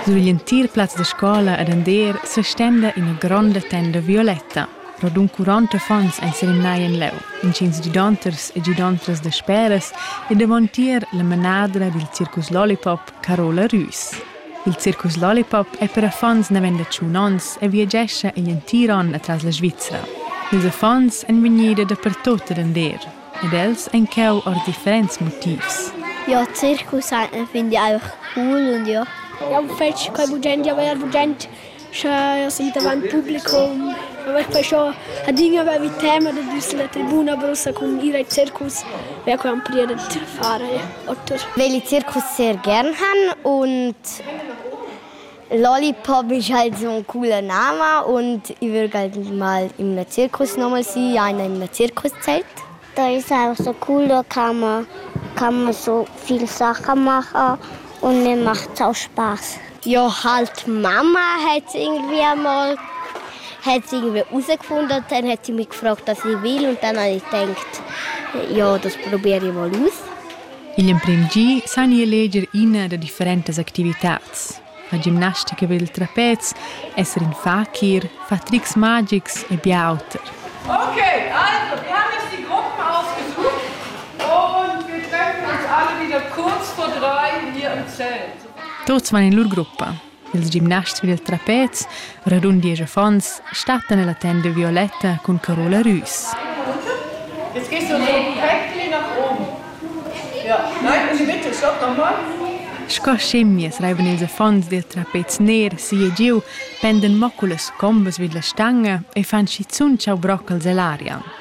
Sur l'entir plaz da scola edender sestenda ina gronda tenda violetta. Radund quaranta affons ein serimnai en leu, intgins gidonters e gidontras dasperas e davontier la manadra dil circus Lollipop, Carola Rüs. Il circus Lollipop ei per affons naven da tschun onns e viagescha igl entir onn atras la Svizra. Ils affons ein vegnida dapertut adender. ed els enqueu ord differents motivs. Jau circus e fin di aur cul un di. Jau fetsch quei bugent, jau verer bugent, sche si davanti publicum. Aver perciò adina avevi tema da dus la tribuna brusa cun ir ai circus, wer quai am priet da fare otter. Veli circus sehr gern han und Lollipop isch halt zuond culla nama und i vögl halt mal in ün circus noman si, aina in ün circuszelt. Da es einfach so cool, da kann man, kann man so viel Sachen machen und mir macht es auch Spaß. Ja, halt Mama hat es irgendwie einmal hat sie irgendwie herausgefunden, dann hat sie mich gefragt, was ich will und dann habe ich gedacht, ja, das probiere ich mal aus. Igl emprem gi san ei eleger ina da differentas activitads. La gimnastica ed il trapez, esser in fakir, far trics magics e bia auter. Okay, also wir haben jetzt die Gruppe ausgesucht und wir treffen uns alle wieder kurz vor drei hier im Zelt. Tuts van in lur gruppa. Ils gimnasts vid il trapez, radund diesch affons, stattan ella tenda violetta cun Carola Rüs. Jetzt gehst du so perfekt nach oben. Ja, nein, uni bitte, stopp nochmal. Sco schimmias reivan ils affons dil trapez ner si e giu, penden moculas combas vid la stanga e fan schizun tschau broccals ell'aria.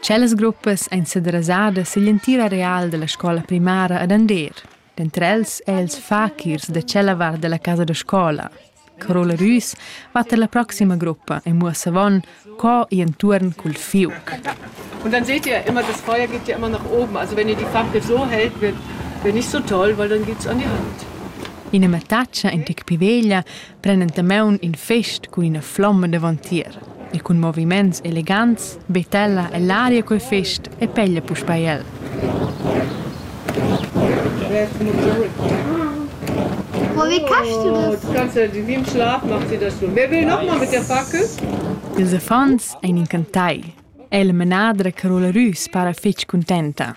Tschellas gruppas ein sederasadas sigl entir areal dalla scola primara ad Andeer. Denter els ei els fakirs da tschella vart dalla casa da scola. Carola Rüs va per la proxima gruppa e muossa avon co ir entuorn cul fiuc. Und dann seht ihr immer, das Feuer geht ja immer nach oben. Also wenn ihr die Fackel so hält, wird, wird nicht so toll, weil dann geht's an die Hand. Ina mattaccia in tec piveglia pren entamaun in fest cun ina flomma davantier e cun moviments elegants betella ell'aria quel fest e peglia puspei el. Oh, wie kannst du das? Du kannst in wie im Schlaf macht sie das schon. Wer will nochmal mit der Fackel? Ils affons ein encantai. El menadra Carola Rüs para fetg contenta.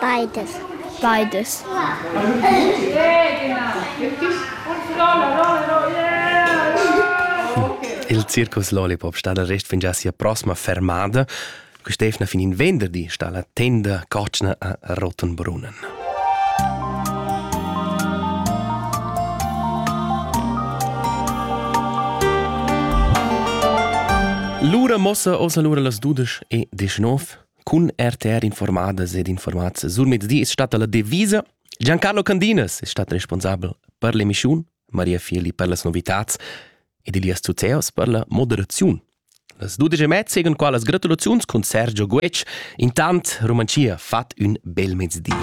Beides. Beides. Il Circus Lollipop sta dal rest fingià sia prossima fermada. Quest'efna fin in venderdi sta la tenda cotschna a Rottenbrunnen. Lura mossa ossa lura las dudesch e deschnov. cun RTR informadas ed informats sur mezdi es statta la devisa Giancarlo Candinas es stat responsabel per l'emischun, Maria Feli per las novitats ed Elias Zuzeos per la moderaziun. Las dudesch e mezza segan qua las gratulaziuns cun Sergio Guetg. Intant Romanzia fat ün bel mezdi.